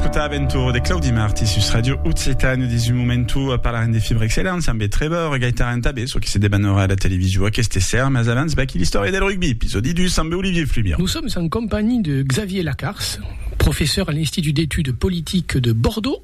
Escolta Aventura de Claudi Marti sus Radio Occitane au 18 momentu a parlarem de Fibre Excellence amb Trevor Gaitaran tabé çò que se debanora a la television aqueste ser mas abans vaqui l'istòria del rugbi episòdi 2 amb Olivier Fluvian. Nous sommes en compagnie de Xavier Lacarce, professeur à l'Institut d'études politiques de Bordeaux.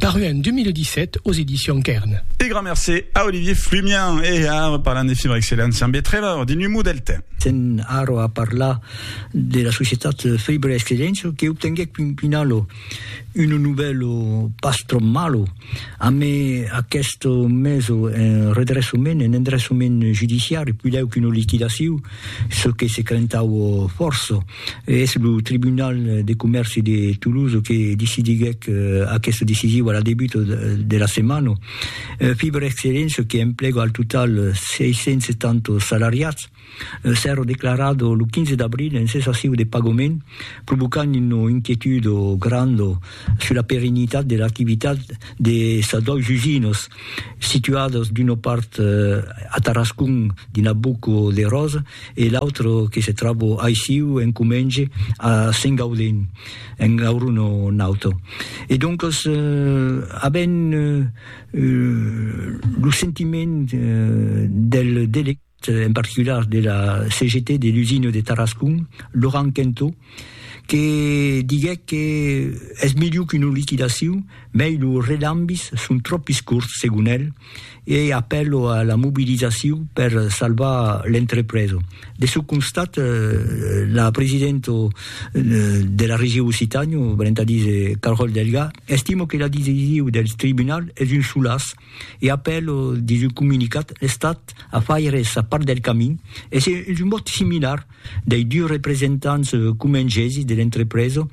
paru en 2017 aux Editions Kern. E grand mercé a Olivier Flumian. E ara parlam de Fibre Excellence amb Be Trevor de Numu Delta. Sèm ara a parlar de la societat Fibre Excellence que obtenguèc fin finala un novèlo pas tròp malo amé aqueste meso en redressament, en endressament judiciari, puidèu qu'una liquidaciu, çò que se crentaua fòrça. Es lo Tribunal de Comèrci de Toulouse que decidiguèc aquesta decisiu a la debut de la setmana. Fibre Excellence, que emplega al total 670 salariats, s'èra declarat lo 15 d'abril en cessaciu de pagament, provocant una inquietuda granda sus la perennitat de l'activitat de sas dois usinas. Situados d'una part a Tarascon dins la Boco de Ròs e l'autre que se tròba aissiu en Comenge a Sengaudin en Aurono Naut. E doncas avèm lo sentiment del delegat. en particular de la CGT de l'usina de Tarascon, Laurent Quentot, que diguèc que es melhor qu'una liquidacion, mei lo relambis son tropis corts, segon el, e apèlo a la mobilizacion per salvar l'entrepresa. De çò constat, la presidenta de la Region Occitània, valent a díser Carole Delga, estima que la decision del tribunal es un solàs, e après lo dins un comunicat l'Estat a faire sa part del camin e se es un vòt similar dei dus representants comengesi de l'entrepresa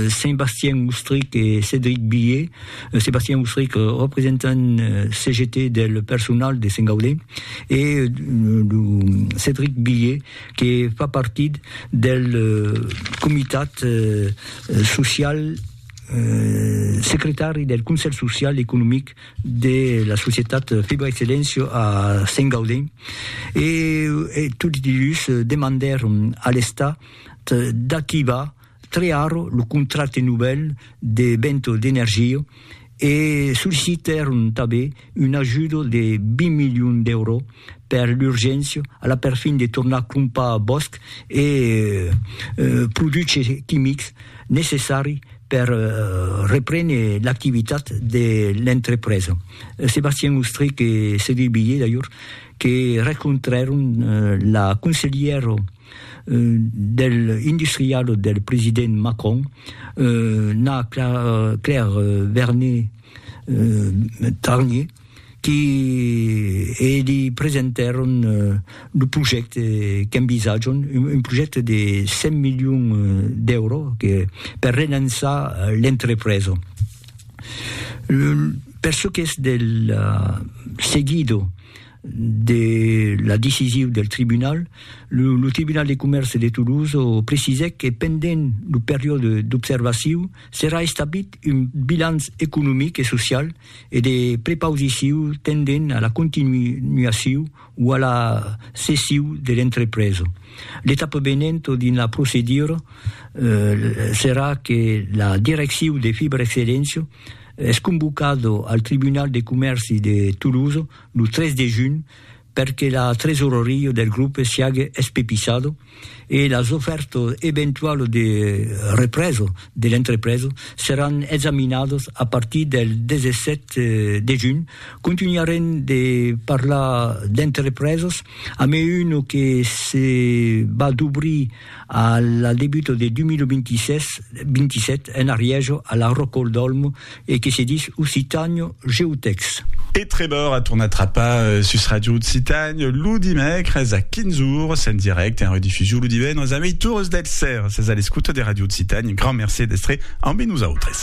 Sébastien Oustric e Cédric Billié Sébastien Oustric representant CGT del personal de Saint-Gaudé e lo Cédric Billié que fa partit del comitat social secretari del Conselh Social e Economic de la societat Fibra Excellencio a Sent Gaudent, e tots dus demandèron a l'Estat d'activar tre ara lo contracte novèl de Vento d'Energia e sollicitèron tanben un ajudo de 20 milions d'èuro per l'urgéncia a la perfin de tornar crompar bòsc e produches quimics necessari per reprene l'activitat de l'entrepresa. Sébastien Ostrich e Cédric Billé d'ajor que rencontrèron la conselhièra del industrialo del president Macron, Na Claire Vernet, Tarnier, qui li presentèron lo projècte qu'envisatjam, un projècte de 100 milions d'èuros per relançar l'entrepresa. Per çò qu'es del seguido de la decisiu del tribunal, lo Tribunal de Comèrce de Toulouse precisèc que pendent lo periòde d'observaciu, Serà establit un bilanç economic e social e de prepausiciu tendent a la continuaciu o a la cessiu de l'entrepresa. L'etapa venent dins la procedura serà que la direcciu de Fibrexcelléncia es convocada al Tribunal de Comèrci de Tolosa lo 3 de junh per que la tresoreria del grupe siague espepisado e las ofèrtas eventualas de represa de l'entrepresa seràn examinadas a partir del 17 de junh. Contunharem de parlar d'entrepresas, a mai una que se va d'obrir A la debuta de 2026-27 en Arièja a la Rocol d'Olmo e que se dis Occitània GeoText. E Trevor a tornat trapar sus Ràdio Occitània lo dimècres a 15 ores en dirècte, en redifusion lo divendres a meitures del sèra. Sètz a l'escota de Ràdio Occitània, grand mercé d'èstre ambe nosautres.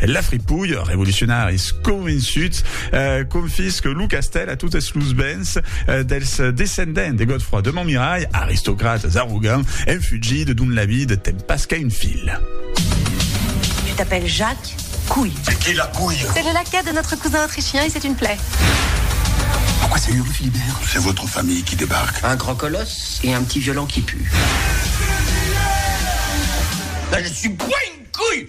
La fripouille, revolucionaris convençuts, confisque lo castèl a totes los bens dels descendents de Godefroi de Montmirail, aristocrates arrogants, en fugida dont la vida ten pas qu'a un fil. Tu t'appelles Jacques Couille. C'est qui la couille? C'est le laquais de notre cousin autrichien et c'est une plaie. Pourquoi c'est Uri Philibert? C'est votre famille qui débarque. Un grand colosse et un petit violon qui pue. Là je suis pas une couille!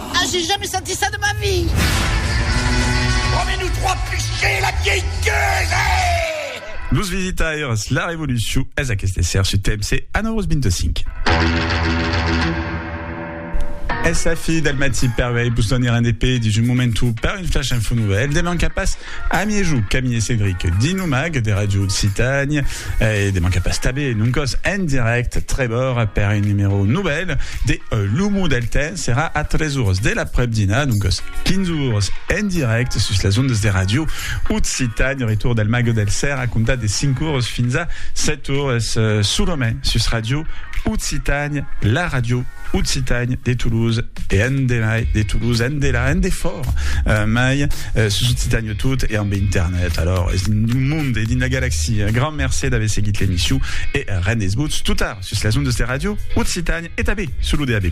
Ah, j'ai jamais senti ça de ma vie! Promets nous trois fichés la vieille gueuse! Los visitaires, la revolucion es aqueste esser su TMC a 9h25. Es la fi del matí per vei vos donir un EP dins un momentu per un flash info nouvelle. Deman cap pas a miejou Camille e Cédric dins lo mag de Radio Occitània e deman cap pas tabé non còs en direct Trevor per un numèro nouvelle de L'Humo del Temps. Serà a 3 oras de l'aprèp-dinar, doncas 15 oras, en dirècte sus las ondas de Ràdio Occitània. Retorn del Mago del Cèr a comptar de 5 oras fins a 7 oras, solament sus Ràdio Occitània, la ràdio occitània de Toulouse e endemai de Toulouse, endelà, endefòra mai, sus Occitània. Tot e ambe internet, alors es dins lo mond e dins la galaxia. Grand mercé d'aver seguit l'emission e rend es votz totar sus las ondas de Radio Occitània e tanben sul lo DAB+.